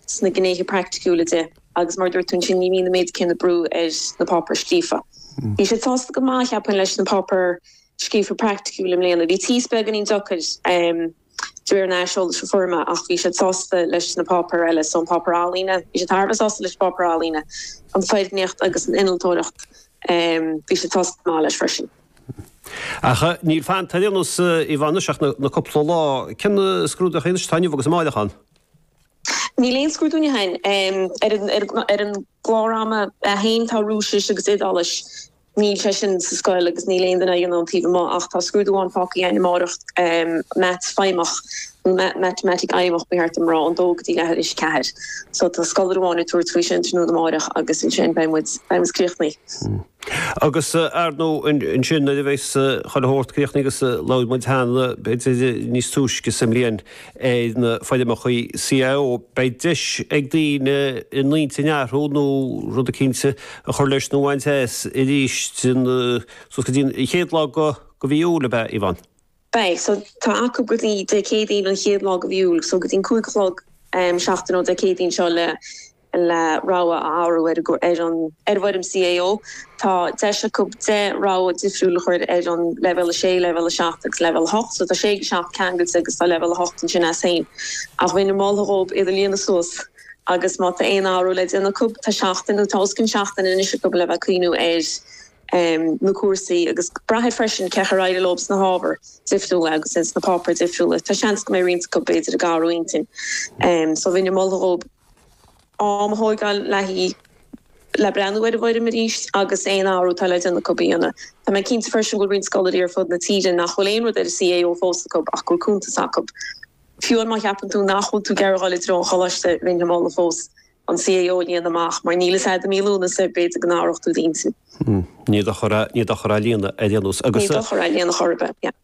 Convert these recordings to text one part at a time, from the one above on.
sna gnéithe praiticiúla de agus mar a dúirt tú ansin ní bhíonn an méid céanna brú ar na páipéir scríofa. Bhí siad sásta go maith, cheapfainn, leis na páipéir scríofa agus praiticiúla i mbliana. Bhí tíos beagáinín deacair de réir an aiseolais a fuair mé ach bhí siad sásta leis na páipéir eile so an páipéar ealaíne, bhí siad thar a bheith sásta leis an bpáipéar ealaíne, an foirgníocht agus an innealtóireacht bhí siad sásta go maith leis freisin. Ach níl fanta ar aon nós, Yvonne, ach na cúpla lá. Cén scrúdú a bheidh anois, atá inniu agus amárach ann? Níl aon scrúdú, ní shin é, ar an, ar an, ar an gclár ama féin, tá Rúisis agus Iodáilis, níl sé sin sa scoil agus níl aon duine á dhéanamh taobh amuigh ach tá scrúdú ann fágtha againn amáireach Meaits Feidhmeach, nó Matamaitic Fheidhmeach ba cheart dom a rá, ón dó go dtí leath tar éis a ceathair. So tá scoláire amháin ag tabhairt faoi sin tráthnóna amáireach agus ansin beidh muid, beidh muid críochnaithe. Agus, ar ndú, ansin nuair a bheidh chuile shórt críochnaithe agus labhair muid cheana, b'fhéidir níos túisce sa mbliain, ar na foirmeacha CAO. Beidh deis ag daoine a n-intinn a athrú nó rud eicínt a chur leis nó a bhaint as arís suas go dtí an chéad lá de mhí Iúil, ab ea, Yvonne? Beidh, so tá acu go dtí Dé Céadaoin an chéad lá de mhí Iúil, so go dtí an cúig a chlog seachtain ó Dé Céadaoin seo le le rogha a athrú ar an ar an bhfoirm CAO. Tá deis acu deich rogha difriúil a chur ar an Leibhéal 6, Leibhéal 7 agus Leibhéal 8, so tá 6 agus 7 ceangailte agus tá Leibhéal 8 ansin as féin. Ach bheinn ag moladh dhóibh iad a líonadh suas agus má tá aon athrú le déanamh acu, tá seachtain nó tá os cionn seachtaine anois acu le bheith ag cuimhneamh ar na cúrsaí agus braithfidh freisin cén chaoi ar éirigh leo sna hábhair difriúla agus sna páipéir difriúla, tá seans go mbeidh roinnt acu b'fhéidir ag athrú intinn, so bheinn ag moladh dhóibh. am a thógáil le, le breathnú ar an bhfoirm arís agus aon athrú atá le déanamh acu a dhéanamh. Tá mé cinnte freisin go bhfuil roinnt scoláirí ar fud na tíre nach bhfuil aon rud ar an CAO fós acu ach go bhfuil cuntas acu. Fiú má cheapann tú nach bhfuil tú ag iarraidh a ghabháil i dtreo an choláiste, bheinn ag moladh fós an CAO a líonadh amach mar níl a fhios agat i mí Lúnasa, b'fhéidir go n-athrófá d'intinn. Ní dochar é a líonadh ar aon nós agus. Ní dochar é a líonadh chor ar bith.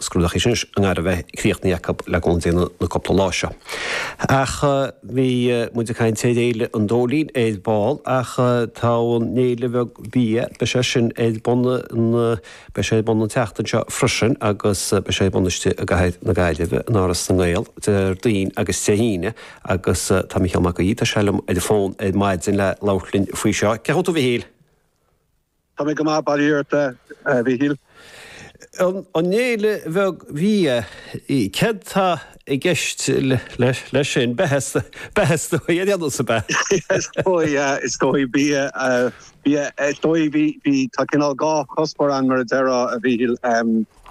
Scrúduithe anois i ngar a bheith críochnaithe acu le go ndéanfaidh na cúpla lá seo. Ach bhí muid ag caint ar Fhéile an Dóilín ar ball ach tá an fhéile bheag bhia, beidh sé sin ar bun an, beidh sé ar bun an tseachtain seo freisin agus beidh sé ar bun istigh i gcathair na Gaillimhe in Áras na nGael, Déardaoin agus Dé hAoine agus tá Mícheál Mac Aoidh, tá sé liom ar an bhfón ar maidin le labhairt linn faoi seo. Cén chaoi a bhfuil tú, a Mhichíl? Tá mé go maith, bail ó Dhia ort, a Mhíchíl. An fhéile bheag bhia, céard tá i gceist leis sin? Beatha is dóigh, an fhéile seo beatha? Is dóigh, is dóigh, bia, bia, is dóigh, bhí, bhí, tá cineál dhá chuspóir ann mar a déarfá, a Mhíchíl. Tá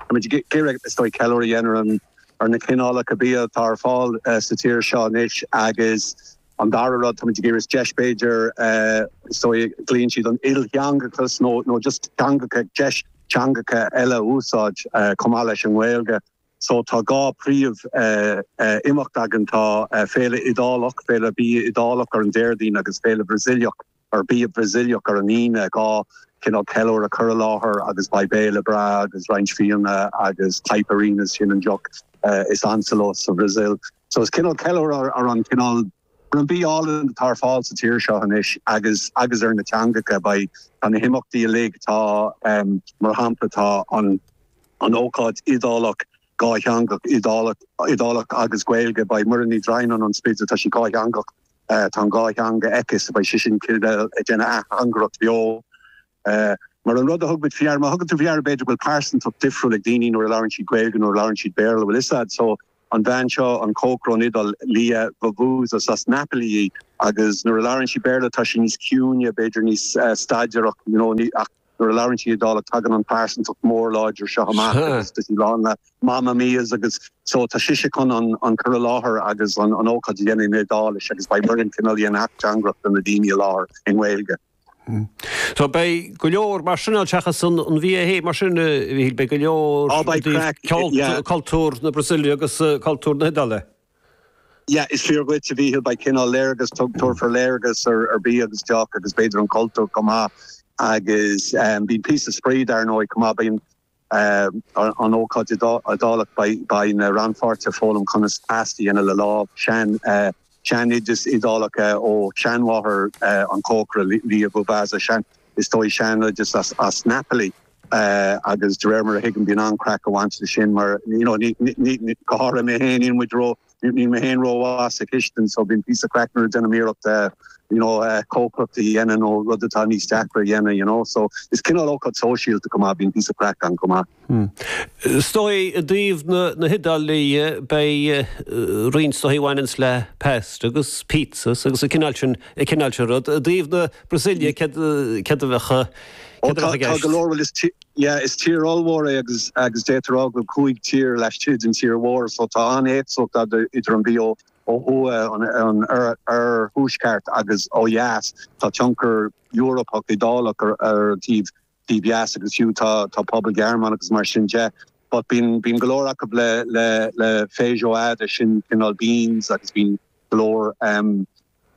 muid ag iarraidh, is dóigh, ceiliúradh a dhéanamh ar na cineálacha bia atá ar fáil sa tír seo anois agus An dara rud, táimid ag iarraidh deis, b'fhéidir, is dóigh, a gcleachtann siad an t-ilteangachas nó nó just teangacha, deis teangacha eile a úsáid chomh maith leis an nGaeilge. So tá dhá phríomhimeacht againn, tá Féile Iodálach, Féile Bia Iodálach ar an Déardaoin agus Féile Bhrasaíleach ar bia Brasaíleach ar an Aoine, dhá chineál ceiliúradh cur i láthair agus beidh béile breá agus roinnt fíona agus caipirinhas, sin an deoch is ansa leo sa Bhrasaíl. So is cineál ceiliúradh ar an cineál, ar an bia álainn atá ar fáil sa tír seo anois agus agus ar na teangacha. Beidh, tá na himeachtaí uilig, tá mar shampla tá an an ócáid Iodálach, dátheangach, Iodálach Iodálach agus Gaeilge, beidh Muireann Ní Dhroighneáin ón Spidéal, tá sí dátheangach, Tá an dhá theanga aici, so beidh sise cineál ag déanamh ateangaireacht bheo mar an rud a thug muid faoi deara. Má thugann tú faoi deara b'fhéidir go bhfuil pearsantacht difriúil ag daoine nuair a labhraíonn siad Gaeilge, nuair a labhraíonn siad Béarla, bhfuil 'fhios a'd. So, an bhean seo, an cócaire ón Iodáil, Lia, Vavasa, is as Napoli í agus nuair a labhrann sí Béarla tá sí níos ciúine, b'fhéidir níos staidéartha, you know, ní, ach. Nuair a labhraíonn sí Iodálach tagann an pearsantacht mhór láidir seo amach agus tá sí lán le mamma mias agus so tá sise chun an cur i láthair agus an ócáid a dhéanamh in Iodáilis agus beidh Muireann cineál i mbun ateangaireacht do na daoine i láthair i nGaeilge. So beidh go leor mar sin ann seachas an bia fhéin mar sin a Mhíchíl, beidh go leor de cultúr na Brasaíle agus cultúr na hIodáile. Yeah, is fíor dhuit, a Mhíchil, beidh cineál léargas, tabharfar léargas ar bia agus deoch agus b'fhéidir an cultúr chomh maith agus beidh píosa spraoi dar ndóigh chomh maith, beidh an ócáid Iodálach, beidh na rannpháirtithe ag foghlaim conas pasta a dhéanamh le lámh, sean, sean oideas Iodálach ó sheanmháthair an chócaire Lia Vavasa, sean. Is dóigh, seanoideas as Napoli agus de réir mar a thuigim bíonn an-craic ag baint le sin mar you know ní, ní, ní, go háirithe mé féin níl muid ró, níl mé féin rómhaith sa chistin so bíonn píosa craic nuair a dhéanaim iarracht eh you know eh cócaireacht a dhéanamh nó rud atá níos deacra a dhéanamh you know so is cineál ócáid sóisialta chomh maith bíonn píosa craic ann chomh maith. Hm. Is dóigh i dtaobh na hIodáile dhe, beidh roinnt de ag baint le pasta agus pizzas agus an cineál sin, an cineál sin rud. I dtaobh na Brasaíle, céard, céard a bheadh, céard a bheadh i gceist? Tá go leor, bhuel is tí, yeah, is tír ollmhór é agus, agus deirtear go bhfuil cúig tír laistigh den tír mhór so tá an-éagsúlacht ar fad idir an bia ó thuaidh, an, an oirthuaisceart agus ó dheas. Tá tionchar Eorpach, Iodálach ar an taobh dímheas agus fiú tá pobal Gearmánach agus mar sin de but bíonn bíonn go leor acub le le le feijoada sin cineál beans agus bíonn go leor em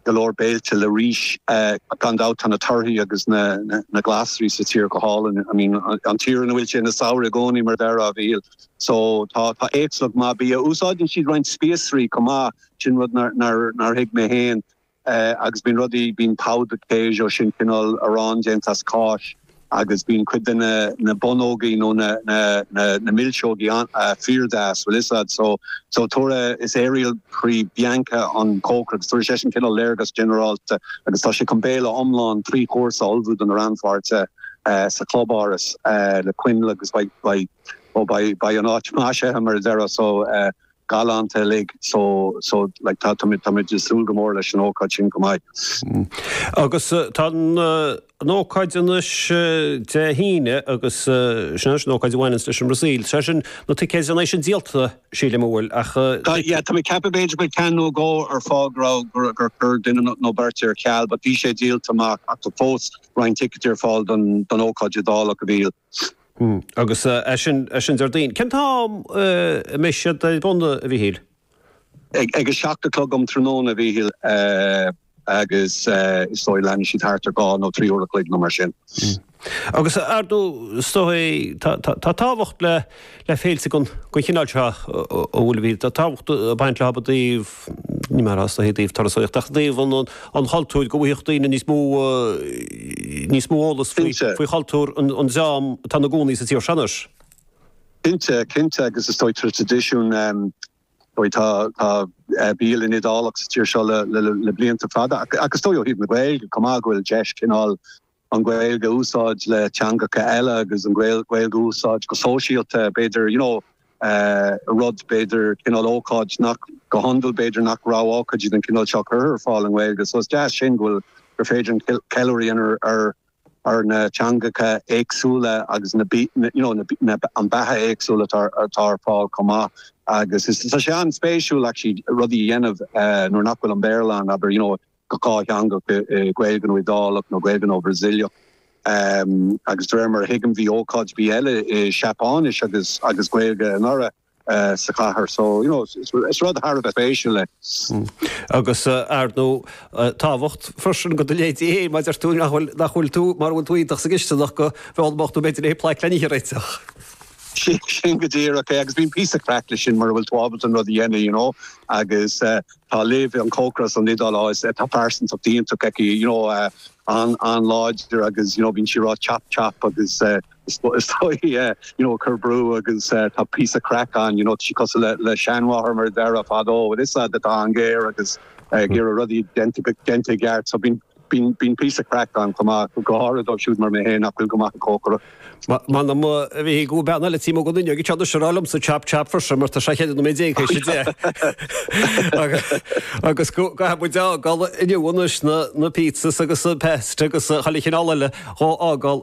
go leor béilte le rís eh gan dabht tá na torthaí agus na na glasraí sa tír go hálainn I mean an tír ina bhfuil sé na samhradh i gcónaí mar a déarfá a Mhíchíl so tá tá éagsúlacht mhaith bia úsáideann siad roinnt spíosraí chomh maith sin rud nar nar nar thuig mé féin Eh agus bíonn rudaí, bíonn pão de queijo sin, cineál arán déanta as cáis agus bíonn cuid de na, na bonnógaí nó na, na, na, na milseoga an-ah, fíordheas, bhuel 'fhios a'd. So, so tabharfaidh, is Ariel Pray Bianca an cócaire agus tabharfaidh seisean cineál léargas ginearálta agus tá sé chun béile iomlán trí chúrsa a ullmhú do na rannpháirtithe eh sa chlubáras eh le coinneal agus beidh, beidh, ó beidh, beidh an áit maisithe mar a déarfá so eh, galánta uilig so so like tá táimid táimid ag súil go mór leis an ócáid sin chomh maith. Agus tá an an ócáid anois Dé hAoine agus sin anois an ócáid a bhaineanns leis an mBrasaíl. Sé sin na ticéid ansin díolta sílim a bhfuil ach Tá yeah tá mé ag ceapadh b'fhéidir beidh ceann nó dhó ar fáil go raibh gur gur chuir duine nó nó beirt ar ceal but bhí sé díolta amach ach tá fós roinnt ticeadaí ar fáil don don ócáid Iodálach a Mhíchíl Hm, agus sin, sin Déardaoin. Cén t-am a mbeidh siad ar bun, a Mhíchíl? Ag a seacht a chlog um tráthnóna, a Mhíchíl, agus is dóigh leanfaidh siad thart ar dhá nó trí uair a chloig nó mar sin. Hm, agus ar ndóigh, is dóigh, tá tábhacht le féilte den chineál seo, an bhfuil, a Mhíchíl, tá tábhacht ag baint leo i dtaobh, ní hamháin ó thaobh turasaíochta ach ó thaobh an chultúir, go bhfaigheadh daoine níos mó níos mó eolas faoi Cinnte. faoi chultúr an an dream atá ina gcónaí sa tír seo anois. Cinnte, cinnte agus is dóigh tá traidisiún em dóigh tá tá eh bialann Iodálach sa tír seo le le le blianta fada ach ach is dóigh ó thaobh na Gaeilge chomh maith go bhfuil deis cineál an Ghaeilge a úsáid le teangacha eile agus an Ghaeilge a úsáid go sóisialta, b'fhéidir, you know, eh, rud, b'fhéidir, cineál ócáid nach, go hiondúil, b'fhéidir nach raibh ócáidí den chineál seo curtha ar fáil i nGaeilge, so is deas sin go bhfuil, gur féidir an ceiliúradh a dhéanamh ar, ar na teangacha éagsúla agus na, you know, na, na, na beatha éagsúla atá, atá ar fáil chomh maith agus is, tá sé an-spéisiúil actually rudaí a dhéanamh, eh, nuair nach bhfuil an Béarla ann, abair, you know, go dátheangach, Gaeilge nó Iodálach nó Gaeilge nó Brasaíleach agus de réir mar a thuigim bhí ócáid, bia eile i Seapáinis agus agus Gaeilge anuraidh sa chathair so you know is rud thar a bheith spéisiúil é. Agus ar ndóigh tábhacht freisin go do leithéidí mar a deir tú nach bhfuil nach bhfuil tú mara bhfuil tú iontach sa gcisteanach go bhfeoil bocht nó b'fhéidir le haghaidh plaic le nithe a réiteach. Sin go díreach é agus bíonn píosa craic le sin mura bhfuil tú ábalta an rud a dhéanamh you know agus Tá Liv, an cócaire as an Iodáil, á, is ea, tá pearsantacht iontach aici, you know, an, an-láidir agus, you know, bíonn sí a' rá chop, chop agus eh, is, is dóigh, you know, ag cur brú agus eh, tá píosa craic ann, you know, tá sí cosúil le, le seanmháthair mar a déarfá fadó, but is ea, tá sí an-ghéar agus ag iarraidh rudaí déanta go, déanta i gceart, so bíonn. Bíonn píosa craic ann chomh maith, go háirithe dóibh siúd mar mé féin nach bhfuil go maith ag cócaireacht. M'anam go bhfuil bean eile timpeall an fhuinneoig anseo anois a rá liomsa chop chop for sure mar tá sé 14 nóiméad tar éis a deich agus go gcaithfidh muid a fhágáil inniu anois na pizzas agus an pesto agus chuile chineál eile dhá fhágáil